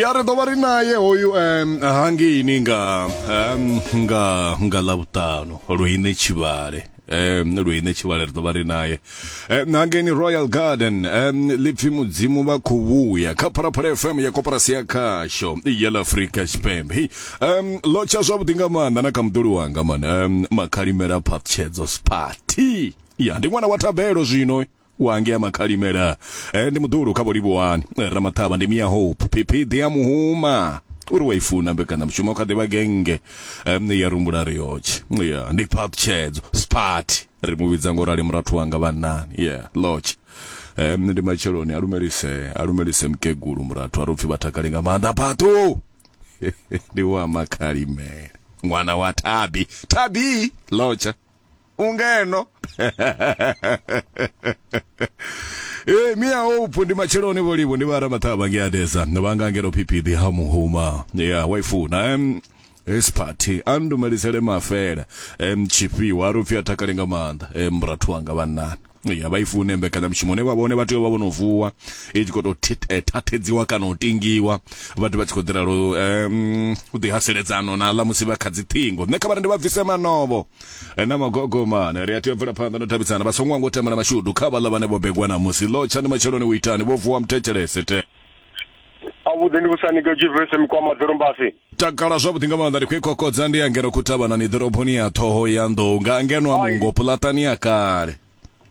ya ri ḓo vha ri naye hoyu um, hangeini nga um, nga nga ḽavhuṱanu luine tshivhale um luine tshivhale ri ḓo vha ri naye um, hangeini royal garden um, lipfi mudzimu vha khou vhuya kha phalaphala fm ya koporasi ya khasho ya ḽa afrika tshipembe Hei, um, ḽo tsha zwavhuḓi nga maanḓa na kha muḓuli wanga mani um, makhalimela phaṱshedzo sparty ya ndi ṅwana wa thabelo zwino wange ya makhalimela eh, ndi muḓulu kha vholivuwani eh, ramaṱhavha ndi mia hope phiphiḓi ya muhuma uri wa i funa mbekanyamushumo kha ḓivha genge um, ya rumbula riotshe yeah. ndi phaṱhutshedzo sparty ri mu vhidza ngo rali murathu wanga vhannani yeah. lotch um, ndi matsheloni a lumelise a lumelise mukegulu murathu a ri upfhi vha takale nga maanḓa phaṱhu ndi wa makhalimela ṅwana wa thabi thabi lotsha ungeno ee mia hope ndi matsheloni vholivo ndi vha ramaṱhavha nge adesa vha nga ngeno phiphiḓi ha muhuma ya waifuna em his party a ndumelisele mafele em tshifhiwa a ri upfi a takale nga maanḓa em rathu wanga vhannani ya vha i fune mbekanyamushumo ne vha vhone vha tea vha vhono vuwa i tshi khou tou eh, thathedziwa kana u tingiwa vhathu vha tshi khou ḓi ralo um u ḓi haseledzano na ḽa musi vha kha dzi ṱhingo nṋe kha vhari ndi vha bvise manovo eh, na magogomane ri a tea u bvela phanḓa no thabisana vha songo wango temela mashudu kha vhaḽa vhane vho begwa na musi ḽo tshani matsheloni u itani vho vuwa muthetshelese te avhuḓi ndi vhusani ke juvese mikwama ḓorombasi takala zwavhuḓi nga maanḓa ndi khou kokodza ndi angeno khuthavhanani ḓoroboni ya ṱhoho ya nḓou nga angeno a mungo pulatani ya kale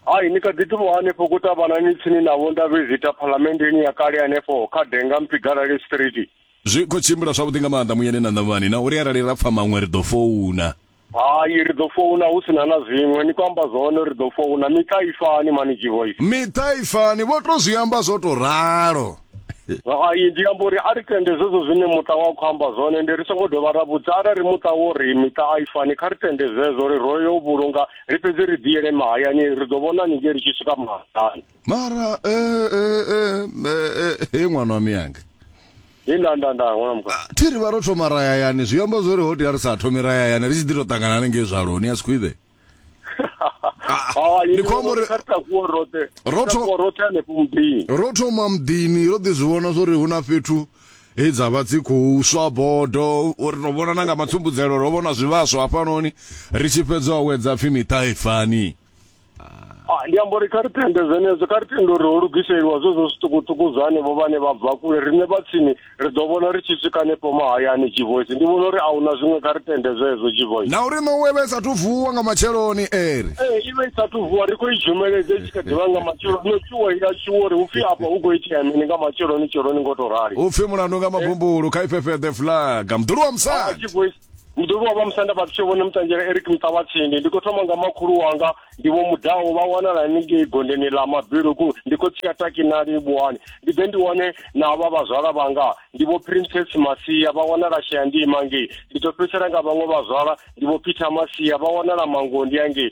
hai ni kha ḓi ṱuwa hanefho kutavhanani tsini na vho ndavhezita phalamenndeni ya kale hanefho kha denga mpigalale street zwi khou tshimbila zwavhuḓi nga maanḓa muyeni na ṋavhani na uri arali ra pfa maṅwe ri ḓo founa Hai ri ḓo founa hu sina na zwiṅwe ni khou amba zwone ri ḓo founa miṱa i fani mani G-Voice. Miṱa i fani vho to zwi amba zwo to ralo. Hai ndi amba uri a ri tende zwezwo zwine muṱa wa khou amba zwone ndi ri songo dovha ra vhudza arali muṱa wo ri miṱa a i fani kha ri tende zwezwo ri ro yo vhulunga ri fhedze ri ḓiyele mahayani ri ḓo vhona haningei ri tshi swika mahayani. mara eh, eh, eh, eh, eh, he ṅwana wa miyanga Ndi nda nda nda ngona mukwa. thi ri vha ro thoma rayayani zwi amba zwori ho tea ri sa thomi rayayani ri tshi ḓi tou ṱangana hanengei zvaloni a sikhwiḓe Ah, ndi khou amba uri- ka ta ku rote. Ro tho- Ro rote ne pumbi. ro thoma muḓini ro ḓi zwi vhona zwori hu na fhethu he dza vha dzi khou swa bodo uri ro vhona na nga matsumbudzelo ro vhona zwivhaswa hafhanoni ri tshi fhedza awedza pfhi miṱa ifani Ah, ndi amba uri kha ri tende zwenezwo kha ri tende uri ho lugiseliwa zwo zwo zwiṱukuṱuku zwa hanevho vhane vha bva kule riṋe vha tsini ri ḓo vhona ri tshi swika hanefho mahayani jivoisi ndi vhona uri a huna zwiṅwe kha ri tende zwezwo jivoisi na uri no wevha isathu vuwa nga matsheloni eri ee i vha i sathu vuwa ri khou i dzhumeledza i tshi kha ḓivha nga matshelo no tshuwa ila tshuwa uri hupfi afha hu khou itea mini nga matsheloni tsheloni ngo to rali upfi mulandu nga mabumbulu kha ifhefheḓe flag mdulu wa musadi jivoisi muḓoli wa vha musanda vhathu tsho vhone mutanzhela eric muṱavhatsindi ndi khou thoma nga makhulu wanga ndi vho mudaho vha wanala haningei gondeni ḽa mabiluku ndi khou tshia takinali vhuhani ndi ḓe ndi wane na vha vhazwala vhanga ndi vho princess masia vha wanala shayandima ngei ndi ḓo fhedzisela nga vhaṅwe vhazwala ndi vho peter masia vha wanala mangondi angei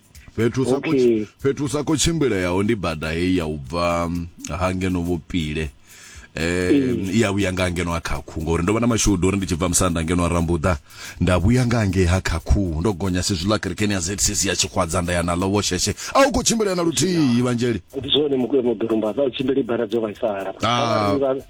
fhethu sa okay. fhethu sa ko tshimbileaho ndi bada heyi ya u bva mm, ha ngeno vhupile eh mm. ya vhuya nga ngeno ha khakhu ngori ndo vha na mashudu uri ndi tshi bva musanda ngeno rambuda nda vhuya nga nge ha khakhu ndo gonya si zwiḽa kerekeni ya ZCC ya tshikhwadza nda ya na lowo sheshe a u kho tshimbila na luthihi evangelii ndi zwone mukwe mudurumba vha tshimbili bara dzo vhaisala ah.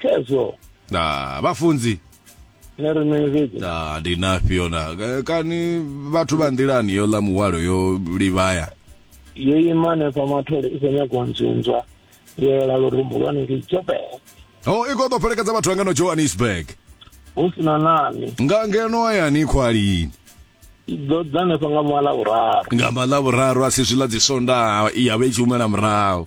khezwo na vhafunzi nṋe ri mini fhedzi na ndi nafhio na eh, kani vhathu vha nḓilani yo ḽa muhwalo yo livhaya yo ima hanefha mathole i khou nyagwa nzunzwa yo yela lurumbu lwa hanengei jobe o i khou ḓo fhelekedza vhathu vha ngeno johannesburg hu si na nani nga ngeno hayani khwalini i ḓo ḓa hanefha nga mala vhuraru nga maḽa vhuraru a si zwiḽa dzi sondaha i ya vha i tshi humela murahu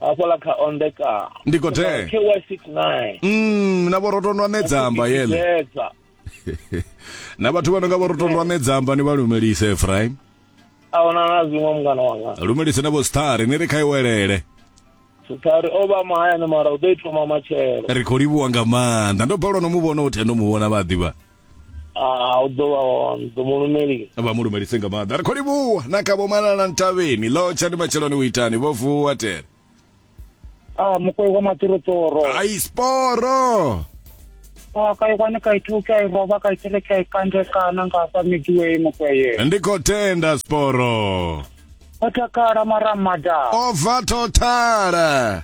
hafhaḽa kha ondeka ndi khou tea ky 69 mm na vhorotondwa nedzamba yele na vhathu vha no nga vhorotondwa nedzamba ni vha lumelise efraim ahuna na zwiṅwe mungana wanga lumelise na vho sithari ni ri kha iwelele sithari o vha mahayani mara u ḓo i thoma matshelo ri khou livhuwa nga maanḓa ndo balwa no mu vhona u thendo mu vhona vhaḓivha Ah, u ḓo vha hone ḓo mu lumelisa vha mu lumelise nga maanḓa ri khou livhuwa na kha vho malala ntavheni ḽo tsha ndi matsheloni u itani vho vuwa tere ah mukwe wa matirotoro ai sporo ah kai kwane kai thu kai roba kai tsele kai kande kana nga fa midiwe mukwe ye ndi khou tenda sporo o takala mara mada o bva thothala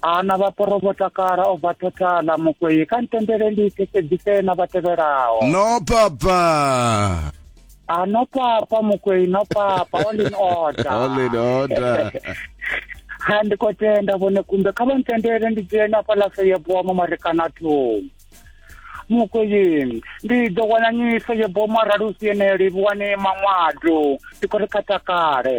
ana vha poro vho takala o bva thothala mukwei kha ntendele ndi thetsedzise na vha tevhelaho no papa a ah, no papa mukwei no papa all in order all in order ha ndi khou tenda vhone kumbe kha vha ntendele ndi dzhene afha lafo ye bowa mo marekana thungo mukweyeni ndi ḓo wana nyiso ye boma ralusi yeneyo livhuwane maṅwado ndi khou ri kha takale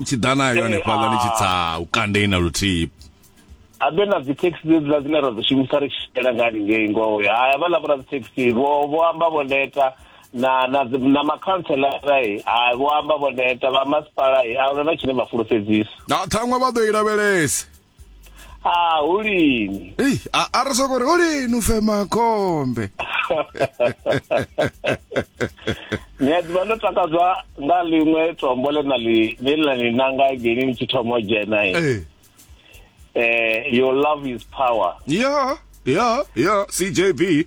u tshi ḓa nayo hanefhaḽa ni tshi tsa u kandei na luthihi habe na dzi taxi dzedziḽa dzine ra dzi shumisa ri tshitshela nga haningei ngoho ha havhaḽa vho ra dzi taxi vho vho amba vho neta na na na makhanselara e ha vho amba vho neta vha masipala e a huna na tshine vha fulufhedzisa na ṱhaṅwe vha ḓo i lavhelesa Ah, hu lini? Ei, a a re soko re o lini u fema khombe. Ni a ḓivha ndo takadzwa nga ḽiṅwe tombo ḽe na ḽi ḽe ḽa ni nanga geni ni tshi thoma u dzhena i. Ee. Eh, your love is power. Ya, ya, ya, CJB.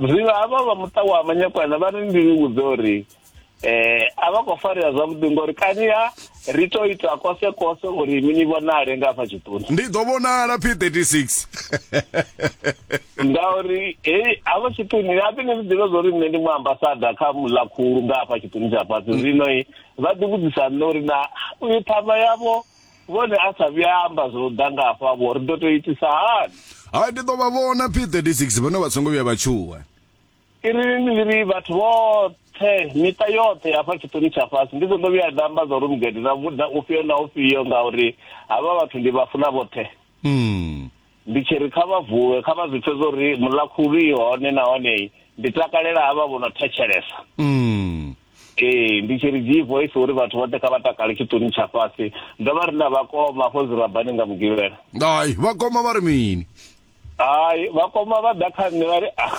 zwiḽa havha vha muṱa wa manyakwana vha ri ndi ni vhudze uri eh a vha khou farea zwavhuḓi ngori kani ha ri to ita kose kose uri mi ni vhonale nga hafha tshiṱoni ndi ḓo vhonala p 36 ngauri hei hafha tshiṱoni hape ni zwi ḓivha zwa uri nṋe ndi mu ambasada kha muḽa khulu nga hafha tshiṱoni tsha fhasi zwino i vha ḓi vhudzisa nṋe uri na uyu ṱhama yavho vhone a sa vhuya amba zwo ḓa nga hafha vho ri ḓo to itisa hani hai ndi ḓo vha vhona p36 vhone vha songo vhuya vha tshuwa iri ni ri vhathu vhoṱhe miṱa yoṱhe hafha tshiṱoni tsha fhasi ndi songo vhuya nda amba zwa uri mugede na vhuḓa ufhio na ufhio ngauri havha vhathu ndi vha funa vhoṱhe mm. Ndi tshi ri kha vha vuwe, kha vha zwi pfe zwo ri Muḽakhulu i hone nahone ndi takalela havha vho no thetshelesa. Ee, ndi tshi ri dzii voice uri vhathu vhoṱhe kha vha takale tshiṱuni tsha fhasi. Ndo vha ri na vhakoma afho zwirabani nga Mugivhela. Hai, vhakoma vha ri mini? Hai, vhakoma vha ḓa kha nṋe vha ri, Ah,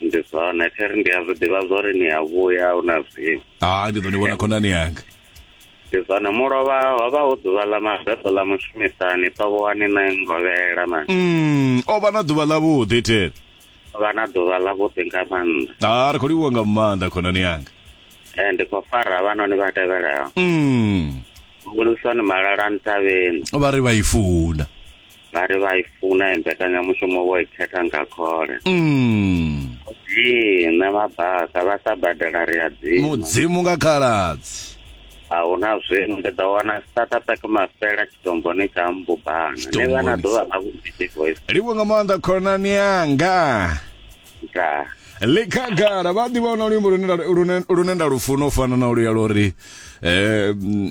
ndi zwone theri ndi a zwi ḓivha zwa uri ni a vhuya hu na zwimu ha ndi ḓo ni vhona khonani yanga ndi zwone mulovha ho vha hu ḓuvha ḽa mabeḓo ḽa mushumisani ṱovhoani na ngovhela mani mm, o vha na ḓuvha ḽavhuḓi theri vha na ḓuvha ḽavhuḓi nga maanḓa ha ri khou livhuwa nga maanḓa khonani yanga e ndi khou fara vhanoni vha tevhelaho mm. hulisani malala ntavheni vha ri vha i funa vha ri vha i funa i mbekanyamushumo vho i khetha nga khole Mm. ee nṋe vha basa vha sa badela ri a dzima mudzimu nga khaladzi a hu na zwino ndi ḓo wana startupak mafela tshitomboni tsha mbubana ni vha na Tshitomboni. ḓuvha ḽa vhudidi voice livho nga maanḓa khonani yanga nda likhagala vha ḓivha na luimbo lune nda- lune- lune nda lufuna u fana na luya lwo ri um